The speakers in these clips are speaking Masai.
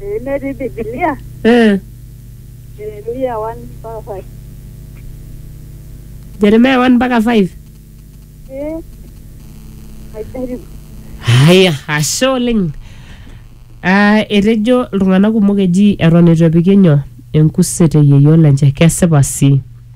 Eh, netii Biblia. Eh, Jeremia 1 mpaka 5. Jeremia 1 mpaka 5. Eh, ajaribu. Haya, ashe oleng. Ah, etejo iltung'anak kumok eji eton eitu epiki nyoo enkuset eyieyo lenche kesipa sii.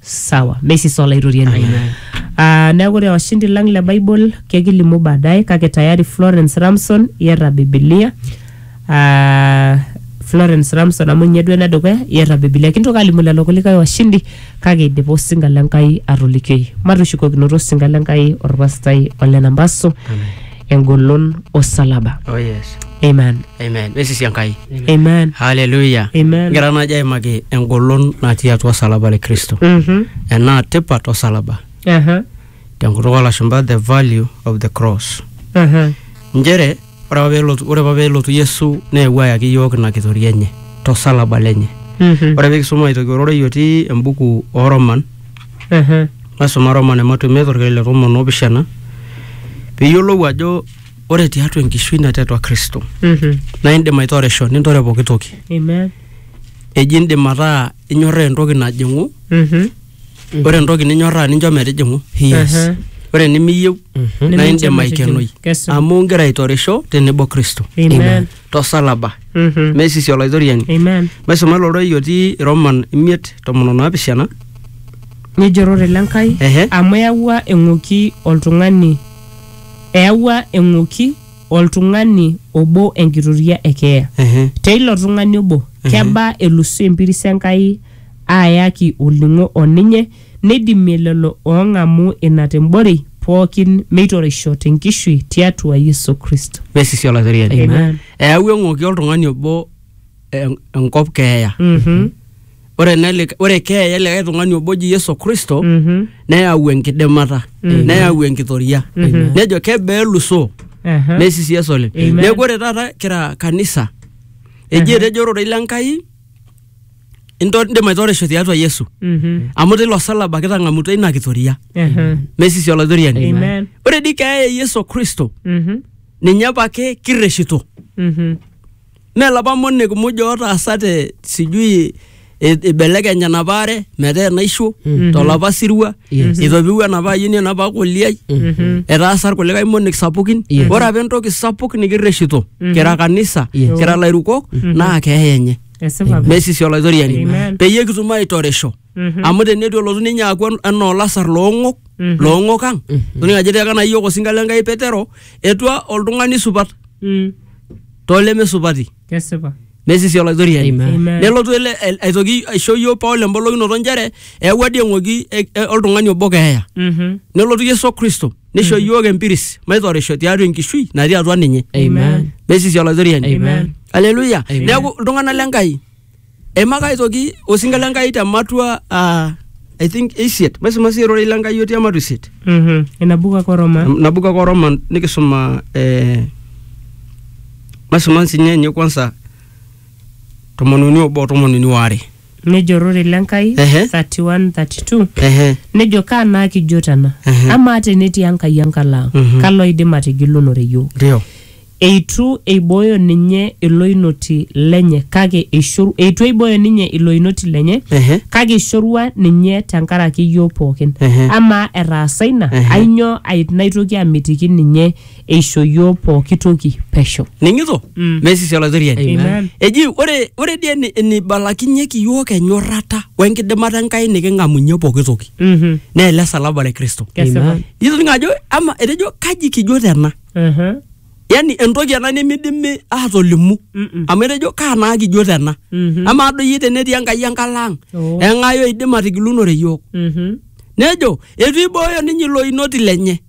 sawa meisisa olaitoriani Amen. Ah, neeku ore washindi lang le bible kekilimu baadaye kake tayari florence ramson iyata bibilia Ah, florence ramson amu ninye duo enedukuya iyata bibilia kintoki alimu lelo kulikae washindi kake idipa osinga lenkai atolikioi matushukokinoto osinga lenkai orpastai ole nambaso engolon osalaba Oh yes. amen Amen. Mesisi Enkai. amen Hallelujah. Amen. Ngira naaji aimaki engolon natii atua osalaba le Kristo. Mhm. Enaa tipat osalaba. Aha. Tenkutuk olashumba the value of the cross. Aha. Nchere ore apa pelotu ore apa pelotu Yesu neewuo ayaki iyiook ina kitoria enye tosalaba lenye. Mhm. Ore pee kisuma aitoki ororei otii embuku oo Roman Ehe. maisuma romane matumia torkeek le tomon opishana piyiolou ajo ore tiatua enkishui natii atua kristo Mhm. naa indim aitoresho nintore pooki toki Amen. eji indim ataa inyorraa entoki najing'u Mhm. ore entoki ninyorraa nincho metijing'u Yes. Ehe. ore enimiyieu Mhm. naa Nimincho indim metijing'u. aikenoi Kesipa. amu ingira aitoresho tenebo kristo Amen. tosalaba Mhm. mesisi olaitoriani Amen. maisuma ilo rorei otii roman imiet tomon o naapishana Nejorore le Nkai Ehe. amu eyawua eng'oki oltung'ani eyawua eng'oki oltung'ani obo enkitoria e keeya. Ehe. Teilo tung'ani obo kebaa elusu empiris Enkai aayaki olning'o o ninye Neidimie lelo oong'amu ina te mborei pooki meitoreisho te nkishui tiatua Yesu Kristo. Mesisi Olaitoriani. Amen. Eyawua eng'oki oltung'ani obo en- enkop keeya. Mhm. Ore ena lika- ore keeya e likae tung'ani obo oji Yesu Kristo Mhm. neyau enkidimata, neyau enkitoria. Nejo kebaa elusoo? Aha. Mesisi Yesu oleng. Amen. Neeku ore taata kira kanisa, eji etejo ororei le Nkai into- indim aitorisho tiatua yesu Mhm. amu teilo salaba kitang'amutua ina kitoria Ehe. mesisi olaitoriani Amen. ore dii keeya e yesu kristo Mhm. ninye apake kirreshito Mhm. mee lapa monek muj ootaasate sijui i- ibelekeny enapa are metaa enaisho tolapa sirua Yes. itopiwuo enapa ayieni enapa koliai Mhm. etaasa irkulikae monek sapukin Yes. ore apa entoki sapuk nikirreshito kira kanisa Yes. kira lairukok naa keeya enye esipa pi. mesisi olaitoriani Amen. peyie kitum aitorisho Mhm. amu tenetu elotu ninye aku en- enaa olasar loong'ok Mhm. loong'ok ang toning ajo etiaka naa yiok osinka le nkai petero etua oltung'ani supat Mm, tolemesupati kesipa mesisi olaitoriani Amen. Amen. nelotu ele el- aitoki aisho yiok paul embolokinoto nchere eewua dii eng'oki e- e- oltung'ani obo keeya Mhm. nelotu yesu kristo nisho iyiook empiris maitorisho tiatua enkishui natii atua ninye Amen. mesisi olaitoriani Amen. aleluya Amen. neeku iltung'anak le nkai eimaka aitoki osinka le nkai te matua ah, i think isiet maisuma sii erorei le nkai otii ematua isiet Mhm. ina buku ake oroma nabuku ake oroma nikisuma eh, maisuma nsinye enye kwanza tomon uni obo tomon uni waare nejo ororei le Nkai Ehe. 31 32 Ehe. nejo kaa naa kijo tena Ehe. amaa tenetii Enkai enkalo ang Mhm. kalo oidim atigilunore iyiook Ndio. eitu eibooyo ninye iloinoti lenye kake eishoru eitu eibooyo ninye iloinoti lenye Ehe. kake eishorua ninye tenkaraki iyiook pookin Ehe. amaa etaasa ina Ehe. ainyoo ai- naitoki amitiki ninye eisho iyiook pooki toki pesho. Ning'ito? Mm. Mesisi Olaitoriani. Amen. Eji ore ore dii eni- enibalakinyeki iyiook enyorrata wenkidimata Enkai niking'amunye pooki toki Mhm. naa ele salaba le Kristo. Kesipa. Amen. Itoning'o ajo ama etejo kaji kijo tena? Aha. Yaani entoki ena nimidimi aatolimu Mm-mm. amu etejo kaa naa kijo tena? Mhm. Amaa doi iyie tenetii Enkai enkalo ang' Oh. eng'ae oidim atigilunore iyiook? Mhm. Nejo eitu eibooyo ninye ilo inoti lenye.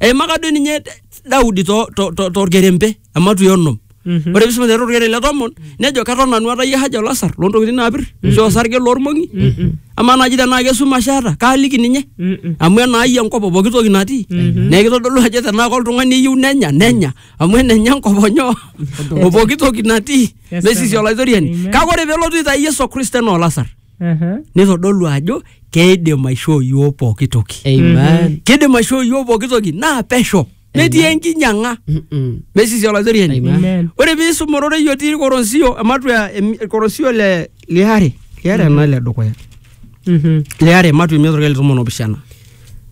eimaka duo ninye daudi torkerempe to, to, torkerempe ematui onom Mhm. ore pisoma aiteru torkerempe le tomon nejo keton nanu atayie haja olasar loontokitin naapir ashu osarge loormong'i amaa naaji tenaa kesumash eeta kaaliki ninye Mm-mm. amu enaayie enkop o pooki toki natii neeku kitodolu ajo tenaa koltung'ani eyieu nenya nenya amu enenye enkop onyo o pooki toki natii Yes, mesisi Baba. olaitoriani Amen. kake ore pelotu aitai yesu kristo enaa olasar Aha. nitodolu ajo keidim aishoo yiok pooki toki Amen. kidim aishoo yiok pooki toki naa pesho metii enkinyang'a Mm-mm. mesisi olaitoriani Amen. Amen. ore piisum ororei otii ilkorosio ematua em- ilkorosio le liare liare ena le dukuya Mhm. liare ematua imiet orkele tomon opishana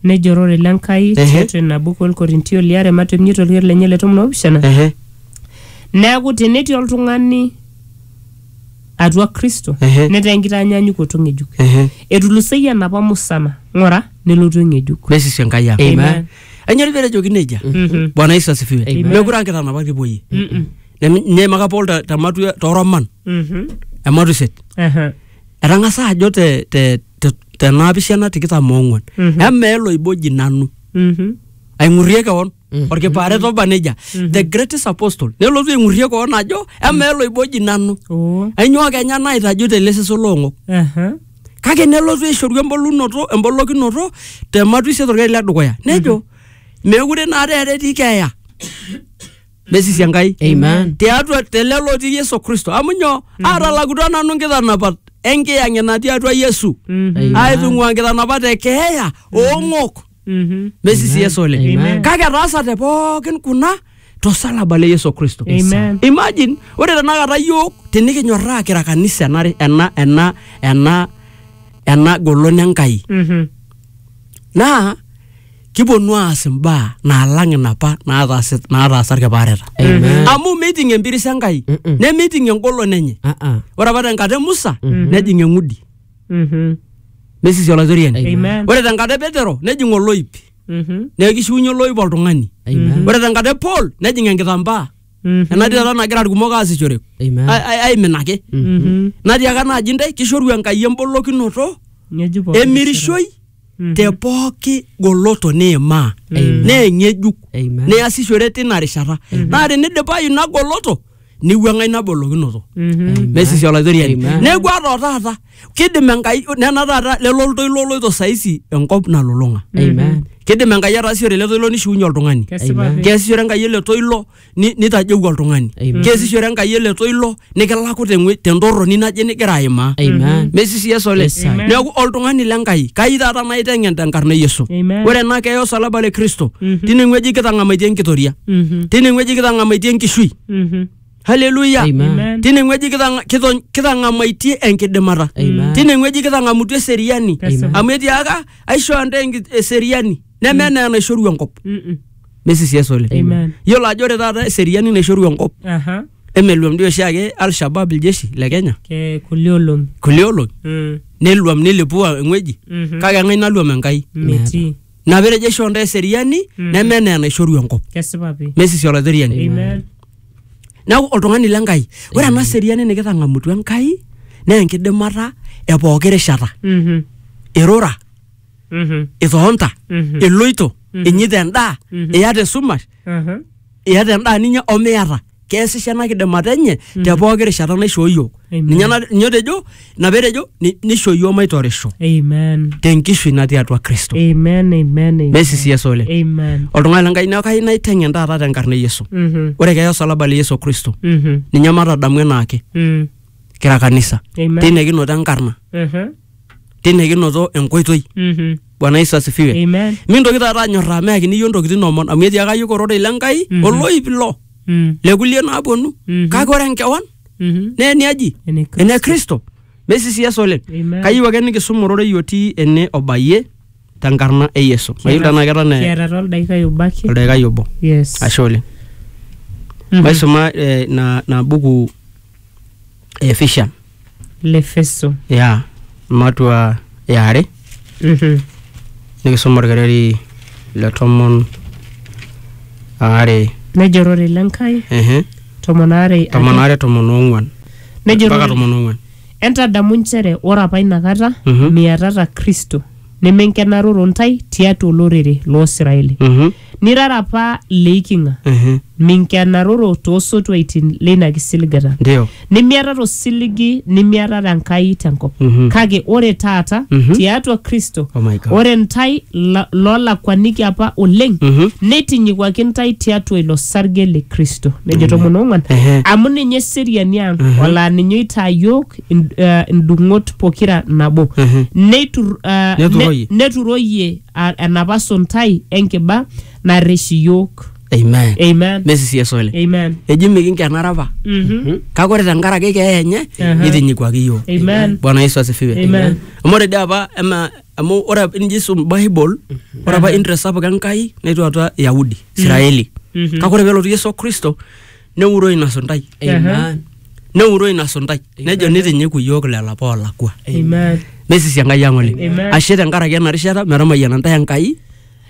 nejo orore le Nkai Ehe. tiatua ina buku olkorintio liare matua imiet olker lenye le tomon oopishana Ehe. neeku tenetii oltung'ani atua Kristo Ehe. netaa enkitaanyanyukoto ng'ejuk. Ehe. Etuluseyie enapa musana, ng'ura, nelotu eng'ejuk. nesisi enkai ang Amen. Amen. enyori pee etejoki nejia bwana yesu asifiwe Amen. mekure ankitanapak tipuoyie nyeimaka paul te- te matua toroman Mhm. ematu iset Aha. etang'asa ajo te- te- te- tenaapishana tikitam oong'uan Mhm. emeelo iboji nanu Mhm. aing'urrie kewon olkipaaret oba nejia the greatest apostle nelotu aing'urrie koon ajo emaa eloiboji nanu Oh. ainyoo kenya naitaju tele seso loong'ok Aha. kake nelotu aishoru embolunoto embolokinoto te matwi isiet orkeri le dukuya nejo meekure naa taata etii keeya mesisi enkai Amen. tiatua telelo otii yesu kristo amu nyoo aatalakutua nanu nkitanapat enkiyang'et natii atua yesu Amen. aitung'ua nkitanapat e keeya oong'ok Mhm. mesisi yesu oleng Amen. kake etaasate pookin kuna tosalaba le yesu kristo Amen. imagine ore tenakata yiok tinikinyorraa kira kanisa ena ena ena ena ena golon enkai Mhm. naa kiponu aas imbaa naalang inapa naataasi- naataasa irkipaareta Amen. amu meiting empiris enkai Mm-mm. nemeiting engolon enye Ah, ah. ore apa tenkata e musa nejing eng'udi Mhm. mesisi olaitoriani Amen. ore tenkata e petero nejing oloip Mhm. neeku kishiunye oloip oltung'ani Amen. ore tenkata e paul nejing enkitambaa Mhm. enatii taata nagira irkumok aasishore Amen. ai- ai- aiminaki Mhm. natii aka naaji ntae kishoru enkai embolokinoto Ng'ejuk pooki emirishoi Mhm. te pooki goloto niimaa Amen. naa eng'ejuk Amen. niasishore tina rishata naa tenidipayu ina goloto niwuang'a ina bolokinoto Amen. mesisi olaitoriani Amen. neeku ata o taata kidim enkai nena taata lelo ltoilo oloito saisi enkop nalulung'a Amen. kidim enkai ataasishore ele toilo nishiunye oltung'ani Kesipa Amen. pi. keesishore enkai ele toilo ni- nitajeu oltung'ani Amen. keesishore enkai ele toilo nikilaku teng'ue- tentorroni naje nigira aimaa Amen. mesisi yesu ole Yes, sir. neeku oltung'ani le nkai kai taata maiteng'en tenkarna e yesu Amen. ore ena keeya osalaba le kristo tine ng'ueji kitang'amaitie enkitoria Mhm. tine ng'weji kitang'amaitie enkishui Mhm. haleluya Amen. Amen. tine ng'weji kitang- kito- kitang'amaitie enkidimata Amen. tine ng'weji kitang'amutua eseriani Kesipa. amu etiaka aishoo ntae enki- eseriani neme enaa enaishoru enkop Mm-mm. mesisias oleng Amen. yiolo ajo ore taata eseriani naishoru enkop Aha. emeluam dii oshiake alshabab iljeshi le kenya Ke kulie olong'i. kulie olong'i Mm. neluam nilipua eng'weji Mhm. kake eng'ae naluam enkai Metii. ina petejo aishoo ntae eseriani neme enaa enaishoru enkop kesipa pi mesisi olaitoriani amen neeku oltung'ani le Nkai ore ena seriani nikitang'amutua Enkai naa enkidimata e pooki rishata Mhm, irura mhm, itonta Mhm. iloito inyita endaa iyata esumash aha, iyata endaa ninya omiyata keesisho ena kidimata enye te pooki rishata naishoo iyiook Amen. ninye na- ninye otejo ina peetejo "Ni- nisho iyiook maitorisho Amen. te nkishui natii atua kristo Amen. Amen. Amen. mesisi yesu oleng Amen. oltung'ani lenkai neeku kayieu naiteng'en taata tenkarna e yesu Mhm. ore keeya osalaba le yesu kristo Mhm. ninye matadamu enaake Mm. kira kanisa Amen. teina kinoto enkarna Mhm. tine kinoto enkoitoi Mhm. bwana yesu asifiwe Amen. mintoki taata anyorraa meakini iyio ntokitin omon amu etiaka iyiook ororei le nkai Mhm. oloip ilo Mm. le kulie naaponu Mhm. kake ore enkewan Mhm. naa eniaji Ene Kristo. ene kristo mesisias oleng Amen. kayieu ake nikisum ororei otii ene obayie tenkarna e yesu mayieu tenaa keton eh, Kiata toldaikai obo ake. oldaikai obo Yes. ashe oleng Mhm. maisuma eh, na, na buku efisha lefeso ya matua yare Mhm. nikisoma orkereri le tomon aare nejo rore le nkai ehe tomon aare tomon aare tomon oong'uan Nejo mpaka Rorei- tomon oong'uan entadamu nchere ore apa inakata Mhm. miatata kristo nemenkenaroro ntae tiatua olorere loo siraeli Mhm. Nirara apa leiking'a, Ehe. minkenaroro toosotuaitin leina kisiligata, Ndio. nimiatata osiligi nimiatata Enkai tenkop. Mhm. Kake ore taata Mhm. tiatua Kristo, Oh my God. ore ntae la- loolakuaniki apa oleng, Mhm. neitinyikwaki ntae tiatua ilo sarge le Kristo. Nejo tomon oong'uan, Ehe. amu ninye eseriani ang, olaa ninye oitaa yook ind- eh, indung'ot pokira nabo. Ehe. Neitur- eh, Neturoyie. ne- neturoyie a- enapa suntai enkiba narrish iyiook amen amen nesisi esole amen eji mikinkenara apa Mhm. kake ore tenkaraki keeya enye Aha. nitinyikuaki yiok Amen. bwana yesu asifiwe Amen. amu ore dii apa ema amu ore apa inji isum bible ore apa interest sapuk enkai netu atua yahudi israeli Mhm. kake ore pelotu yesu kristo neuroo ina suntai Amen. neuroo ina suntai nejo nitinyiku iyiook lelo apa oolakua Amen. nesisi enkai ang oleng Amen. ashe tenkaraki ena rishata metamayiana ntae enkai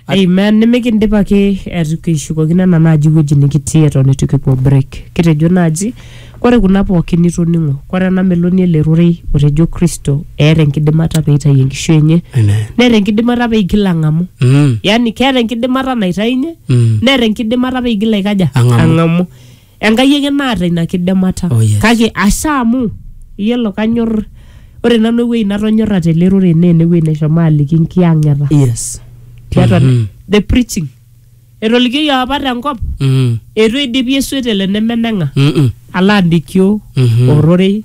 Amen. Nimikindip ake eitu kishukokino ena naaji wueji nikitii eton eitu kipuo break. Kitejo naaji ore kuna pookin nitoning'o, ore ena meloni ele rorei otejo Kristo eeta enkidimata pee eitayu enkishui enye, Amen. neeta enkidimata pee igil ang'amu. Mm. Yaani keeta enkidimata naitayunye Mm. neeta enkidimata pee igil aikaja Ang'amu. ang'amu enkai ake naata ina kidimata Oh, yes. kake asha amu iyiolo kanyor ore nanu ewueji natonyorra tele rorei naa enewueji neshomo aliki nkiyang'eta yes tiatua Mhm. the preaching etolikioyie apa tenkop Mm. eitu eidipi esuet ele nemeneng'a Mm-mm. ala abikio Mhm. ororei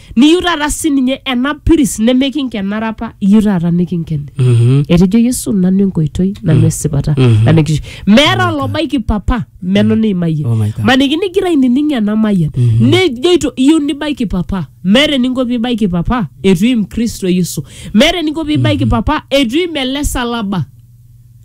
niyieu taata sininye ena piris nemekinkenare apa iyieu taata nikinkeni Mhm. etejo yesu nanu enkoitoi nanu esipata Mhm. nanu enkishui meeta olobaiki papa meno neimayie Oh my God. maniki nigira ainining ena mayian nejoito iyieu nibaiki papa meeta eninko piibaiki papa etu im kristo yesu meeta eninko piibaiki papa etu im ele salaba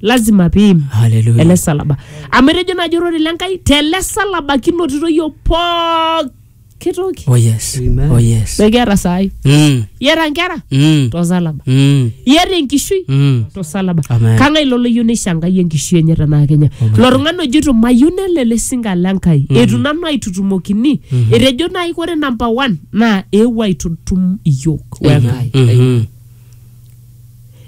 lazima piim Hallelujah. ele salaba amu etejo naaji orore le nkai tele salaba kinotito yiok pooki kitoki Oh yes. Amen. Oh yes. mekiata saai Mm. iata nkera Mm. tosalaba Mm. iata enkishui Mm. tosalaba Amen. kang'ae ilo loyieu neishangai enkishui enye tenaa kenya ilo tung'ani ojito mayieu nelo ele sinka le nkai etu nanu aitutumokini etejo naai kore namba one naa eewuo aitutum iyiok wenkai Mhm.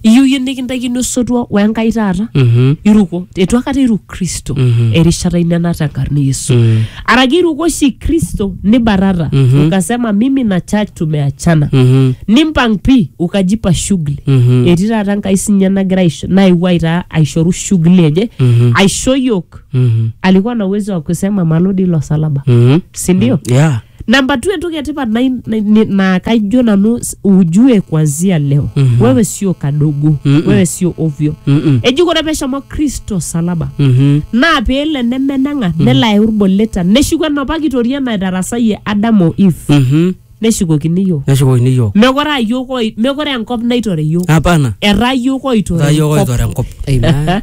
iyieu yie nikintaikini osotua we Enkai taata Mhm. iruko eitu akata iruk Kristo Mhm. erishata ino ena tenkarna e Yesu Mm. araki iruko oshi Kristo nibatata Mhm. ukasema mimi na church tumeachana Mhm. nimpang pi ukajipa shughuli Mhm. etii taata Enkai sinye nagira aisho- naewuo aitaa aishoru shughuli enye Mhm. aisho yiok Mhm. alikuwa na uwezo wa kusema malodi ilo salaba Mhm. sindio Yeah. namba tu entoki etipat nai- nai- ni- naa kaijo nanu s- ujue kuanzia leo Mhm. wewe sio kadogo Mm-mm. wewe sio ovyo Mm-mm. eji kore peshomo kristo salaba Mhm. naa peelo enemenang'a nelo ayau irboleta neshuku enapa kitoria naitarasayie adamu o eve Mhm. neshukokini yiok neshukokini yiok mekore aa yiok oi- mekore enkop naitore yiok hapana etaa yiok oitore etaa yiok enkop. oitore enkop Amen.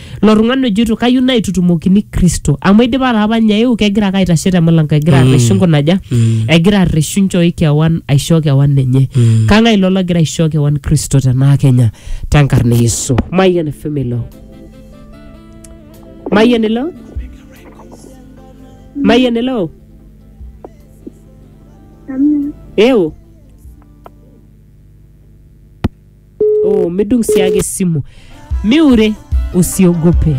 Ilo tung'ani ojoito kayieu naitutumokini Kristo amu eidipa taa apa ninye aeu kegira ake aitashe te mulango egira arreshu nkunaja egira arreshu nchoi kewan aisho kewan enye kang'ae ilo logira aisho kewan Kristo tenaa kenya tenkarna e Yesu Mayian FM ilo Mayian ilo Mayian ilo Amen. eu oh, midung sii ake esimu miure usiogope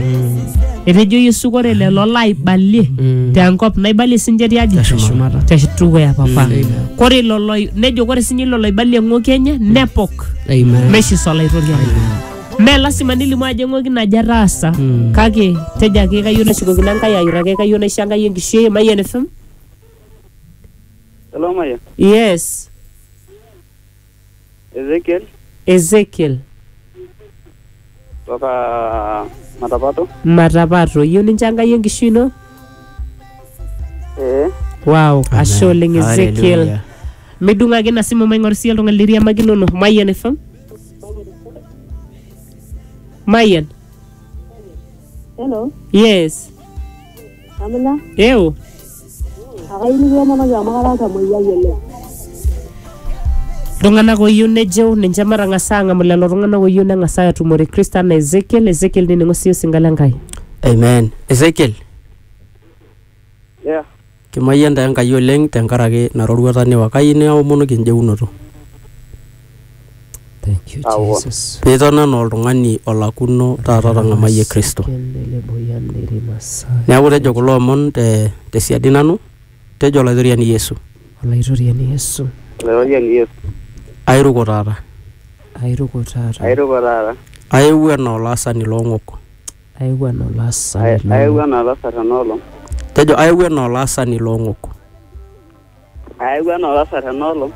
etejo yesu kore lelo laibalie Mm. tenkop naibalie sinche tiaji Teshumata. tedukuya papa kore lolo nejo kore sinye lolo oibalie ng'oki enye nepok Amen. meshiso olaitoriani me lasima nilimu ajo eng'oki naje ataasa Mm. kake tejo ake kayieu nashukokino enkai ayura ake kayieu naisho enkai enkishui ai mayian fm Hello, Maya. yes Ezekiel Ezekiel kutoka Matapato. Matapato. Iyieu nincho Enkai enkishui ino? Eh, Wow, ashe oleng Ezekiel. Hallelujah. Midung'aki ina simu maing'oru siyie oltung'ani liriamakinono. Mayian FM. Mayian. Hello. Yes. Amina, Ewo. akayieu nikiya namaki amu karaata moyiai oleng. Iltung'anak ooyieu nejeu ninche matang'as aang'amu lelo tung'anak ooyieu neng'as aatumore Kristo anaa Ezekiel. Ezekiel nining'o sii osinka le Nkai. Amen. Ezekiel, Yeah. kimayian taa Enkai oleng tenkaraki ina roruata niwa. Kayieu niomonu kinjeunoto. Thank you, Awo. Jesus. Nitona naa oltung'ani olakuno taata otang'amayie Kristo. Neeku tejo kulo omon te tesiadi nanu, tejo Olaitoriani Yesu, Olaitoriani Yesu, Olaitoriani Yesu. airuko taata, airuko taata, Airoko taata. aewuo enaa olaasani loong'ok. aewuo enaa olaasani Aewuo loo- enaa olasar ena olong. Tejo aewuo enaa olaasani loong'ok. Aewuo anaa olasar ena olong.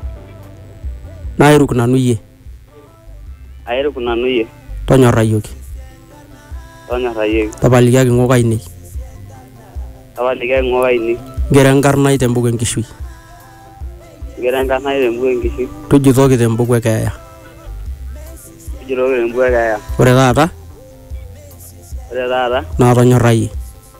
Nairuk nanu iyie. Airuk nanu iyie. Tonyorrayioki. Tonyorrayioki. Tapalikiaki ng'ok ainei. Tapalikiaki ng'ok ainei. Ngero enkarna ai tembuku enkishui. Ngero enkarna ai tembuku enkishui. Tujutoki tembuku e keeya. Tujutoki tembuku e keeya. Ore taata. Ore taata. Naatonyorrayie.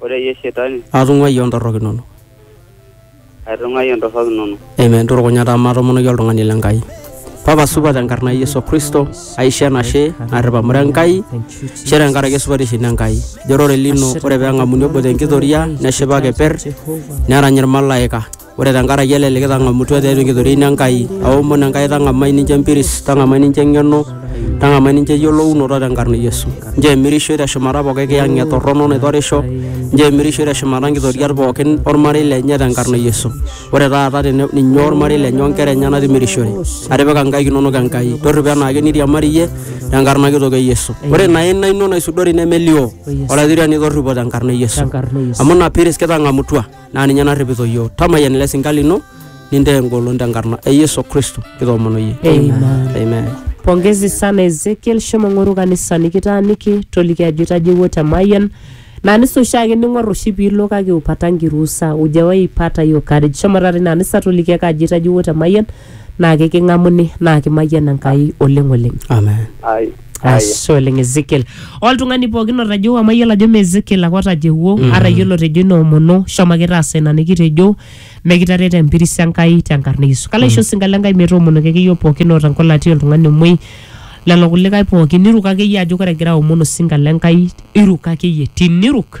Ore iyie shetani. Atung'uayie o ntorrok inono. Aitung'uayie ntorrok inono. Amen. Turukunya taa maatomonoki oltung'ani le Nkai. Papa supa tenkarna e Yesu Kristo, aisho enashe narrip amu ira Enkai, ashe tenkaraki esupatisho ino Enkai. Ijo ororei lino ore pee eng'amuni obo te nkitoria neshipa keper nerany ilmalaika. Ore tenkaraki ele likitang'amutua tiatua enkitoriaino Enkai, aomon Enkai tang'amai ninche empiris, tang'amai ninche eng'eno, tang'amai ninche eyiolounoto tenkarna e Yesu. Nchoo emirishoi teshumata pooki kiyang'et torrono naitorisho, nchoo emirishoi teshumata nkitoriat pooki olmarei lenye tenkarna e Yesu. Ore taata tene ninye olmarei lenye o nkera enyena timirishore. Atipika nkaik inono Enkai. Torripo enaake niriamari iyie tenkarna kitok e Yesu. Ore ina aina ino naisudori nemelioo, Olaitoriani torripo tenkarna e Yesu. Amu ina piris kitang'amutua. naa ninye narripito iyiook tamayian ele sinka lino nintaa engolon tenkarna e yesu kristo kitoomono iyie Amen. amen pongezi sana ezekiel shomo ng'oru kanisa nikitaaniki toliki ajo itajewuo te mayian naa nisa oshiake ning'or oshi piilo kake upata nkirusa ujawaipata hiyo courage shomo taata ina anisa toliki ake ajo itajewuo te mayian naa keking'amuni naa kimayian Enkai oleng oleng. Amen. Ai. Ai. Ashe oleng Ezekiel. Oltung'ani pookin otejo amayiolo ajo mee Ezekiel ake otajehuo mm. ara iyiolo otejo ina omono shomo ake taasa ina nikitejo mekitaret empiris Enkai tenkarna e Yesu. Kalo aisho osinka le Enkai metoomonoki ake iyiook pookin oota enkolati oltung'ani omuoi lelo kulikae pookin iruk akeyie ajo ore egira aomon osinka le Enkai iruk akeyie tiniruk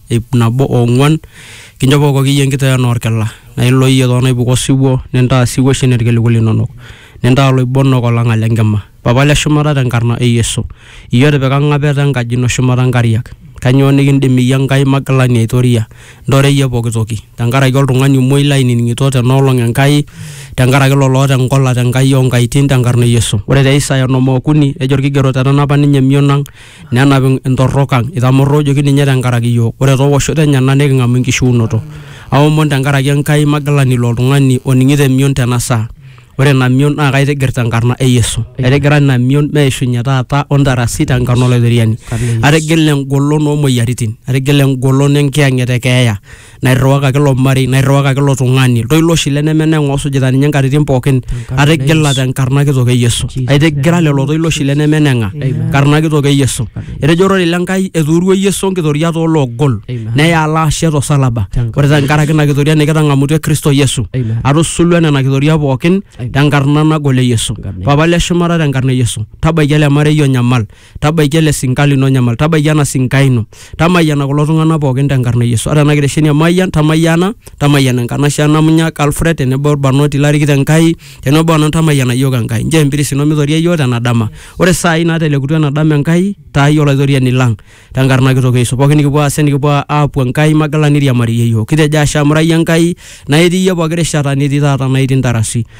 ip nabo ong'uan kinchopoko kiyie enkitoyana orkila naa ilo iyie toonaipuka osiwuo nintaa siwuo shina irkiliku linonok nintaa iloibonok olang'a le nkima papa le shumata tenkarna e yesu iyie otipika ing'apeta enkaji ino shumata inkariak kanyoo nikindim iyie enkai magilani aitoria intore iyie pokitoki tenkaraki oltung'ani omuoi lainining'ito tenoolong enkai tenkaraki lolo oota engola tenkai onkaitin tenkarna e yesu ore te isaya onom okuni ejo irkigerot etanapa ninye emion ang nenap intorrok ang itamorroojoki ninye tenkaraki iyiook ore toowoshoto enyena niking'amu enkishiunoto aomon tenkaraki Enkai magilani ilo tung'ani oning'ito emion tena saa ore ina mion naa kaitigir tenkarna e Yesu aitigira ina mion meishunye taata o ntarasi tenkarna Olaitoriani atigila engolon oomoyiaritin atigila engolon enkiyang'et e keeya nairriwakaki ilo marei nairriwakaki ilo tung'ani iltoilo oshi leneme neng'u osujita ninye nkatitin pookin Tenkarna atigila Yesu. tenkarna kitok e Yesu Jesus. aitigira lelo toilo oshi leneme neng'a Amen. karna kitok e Yesu Amen. etejo ororei le Nkai etuurua Yesu nkitoria tooloogol Amen. neya alo ashe tosalaba Tenkarna ore tenkaraki ina kitoria nikitang'amutua Kristo Yesu Amen. atusulua nena kitoria pookin Amen. tenkarna nagol e Yesu Amen. papa le shumata tenkarna e Yesu tabaiki ele marei onyamal tabaiki ele sinka lino nyamal tabaiki ena sinka ino tamayiana kulo tung'anak pookin tenkarna e yesu ata ena kitesheni e mayian tamayiana tamayiana enkanashe e namunyak alfred tenebo orbarnoti larikito enkai tenebo onan tamayiana yiok enkai njoo empiris ino mitoria yiok tena dama ore saai natelekutua ena dama enkai taayie olaitoriani lang tenkarna kitok e yesu pookin nikipuo aas enikipuo aapuo enkai magila niriamariyie yiok kitejo ashe amu ira iyie enkai naa itii iyie pooki rishata netii taata naa itii intarasi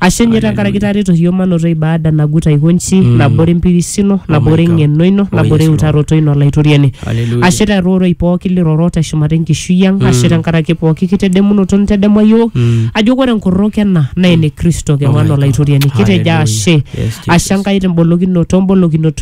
Ashe ninye tenkaraki itareto iyiook manoto ibaada nagut aiko nji, nabore empiris ino, nabore God. eng'eno ino, Oh, nabore yes, Lord. eutaroto ino Olaitoriani. Hallelujah. Ashe teroroi pooki liroro teshumata enkishui ang, ashe tenkaraki pooki kitedemunoto nitedemua iyiook, ajo ore enkorrok ena naa ene Kristo Oh, my kewan God. Olaitoriani. Kitejo Hallelujah. ashe. Yes, Jesus. Ashe Enkai tembolokinoto, mbolokinoto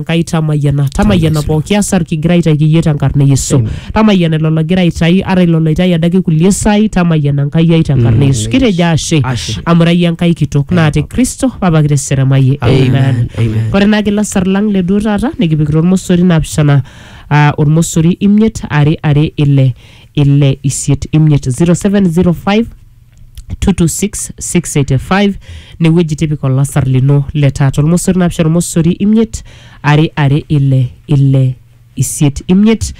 Enkai tamayiana, tamayiana pooki asar kigira aitaiki iyie tenkarna e Yesu. Tamayiana ilo logira aitai, ata ilo loitai adake kulie saai, tamayiana Enkai ai tenkarna e Yesu. Kitejo ashe, Ashe. amu ira iyie Enkai kitok naa te Kristo apa kiteseremayie. Amen. Amen. Amen. Ore naa kila sar lang le duo taata nikipikita ormosori naapishana ah, ormosori imiet are are ile ile isiet imiet 0705 226685 newueji tipika olasar lino le taata olmosori naapishana olmosori imiet are are ile ile isiet imiet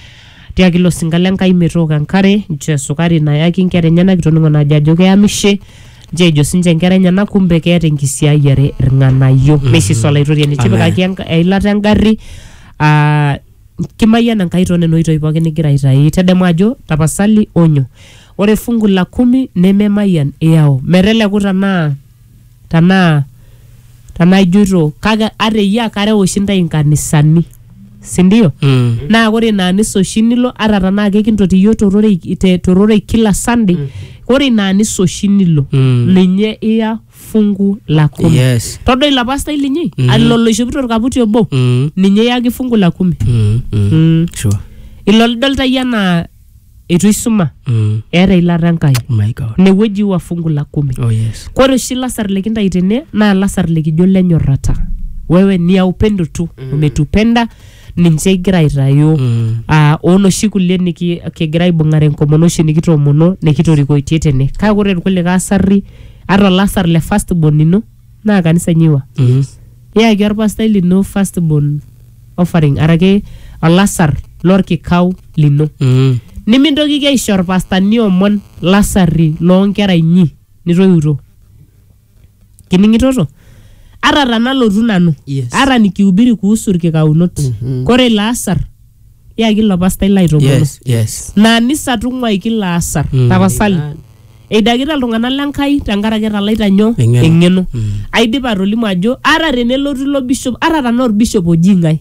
tiaki ilo sinka le Nkai metooko enkare nchoo esukari nayaki inkera enyenak itoning'o naajo ajo keyamishe nchoo ejo sinche inkera enyenak kumbe keeta enkisiayiare irng'anayio neisisa olaitoriani tipikaki enka- eilata engarri aa kimayian Enkai too nena oitoi pookin nigira aitayu tedemu ajo tapasali onyo ore fungu la kumi nememayian iyau meteleku tanaa tanaa tanaa ijoito kake ata eyia kareu oshi intae inkanisani sindio Mm. naa ore ina anisa oshi nilo ata tanaa kekintoti iyiook tororei te- tororei kila sunday ore ina anisa oshi nilo Mm. ninye iya fungu la kumi Yes. todo ilo pastai linyi mm. ilo loishopito orkaputi obo Mm. ninye iyaki fungu la kumi Mm. Mm. mm. Sure. ilo lidolta iyie anaa eitu isuma Mm. eeta ilata enkai Oh my God. inewueji wa fungu la kumi Oh yes. kore oshi lasar likintai tene naa lasar likijo lenyorrata wewe ni ya upendo tu umetupenda ninche igira aitayu Mm. ah, onoshi kulie niki- kigira aibung'are enkomono oshi nikitoomono nikitorikoitie tene kake ore irkulikae asarri ata olasar le first born ino naa kanisa nyiwa Mhm. niyaki orpastai lino first born offering araki olasar lorkikau lino Mhm. nimintokiki aisho orpastani omon lasarri loonkera inyi nitoiuto kining'itoto ata tanalotu nanu Yes. ata nikihubiri kuhusu irkikaunot Mhm. kore ilo asar yaki ilo pastai laitopolo Yes, yes. naa nisa tung'uai kilo asar Mm. tapasali eidakita iltung'anak lenkai tenkaraki etalaita nyoo Eng'eno. eng'eno Mm. aidipa atolimu ajo ata tenelotu ilo bishop ata tanaa orbishop oji ng'ae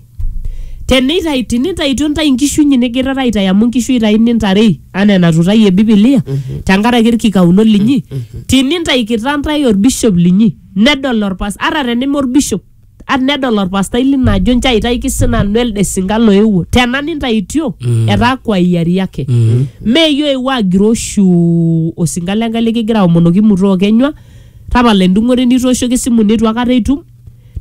teneitai tinitaitio ntae inkishu inyi nigirara aitai amu inkishu itai nintarei anaa enatutayie bibilia tenkaraki irkikauno linyi tinintaikita ntae orbishop linyi nedol orpas ata teneme orbishop at nedol orpastai lino ajo nchoo aitaiki sinanu elde sinka loewuo tena nintaitio etaa kwa hiari yake meyie oewuo agiroo shuu osinka lenkai likigira aomonoki muto okenywa tapala endung'ore nitooshoki esimu neitu akata itum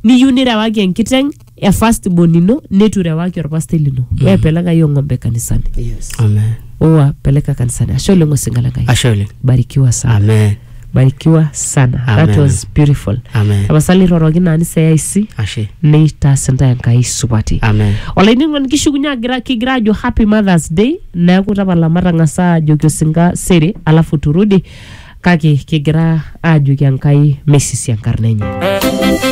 niyieu nirewaki enkiteng e first born ino netu irewaki orpastai lino weya pelaka hiyo ng'ombe kanisani Yes. Amen. owa peleka kanisani ashe oleng osinga lenkai Ashe oleng. barikiwa sana Amen. barikiwa sana that Amen. was beautiful Amen. tapasali iroroki naa niseyaic Ashe. neitaas intae enkai supati Amen. olainining'oni kishukunye agira kigira ajo happy mothers day neeku tapala matang'asa ajoki osinka sere alafu turudi kake kigira ajoki enkai meisisi enkarna enye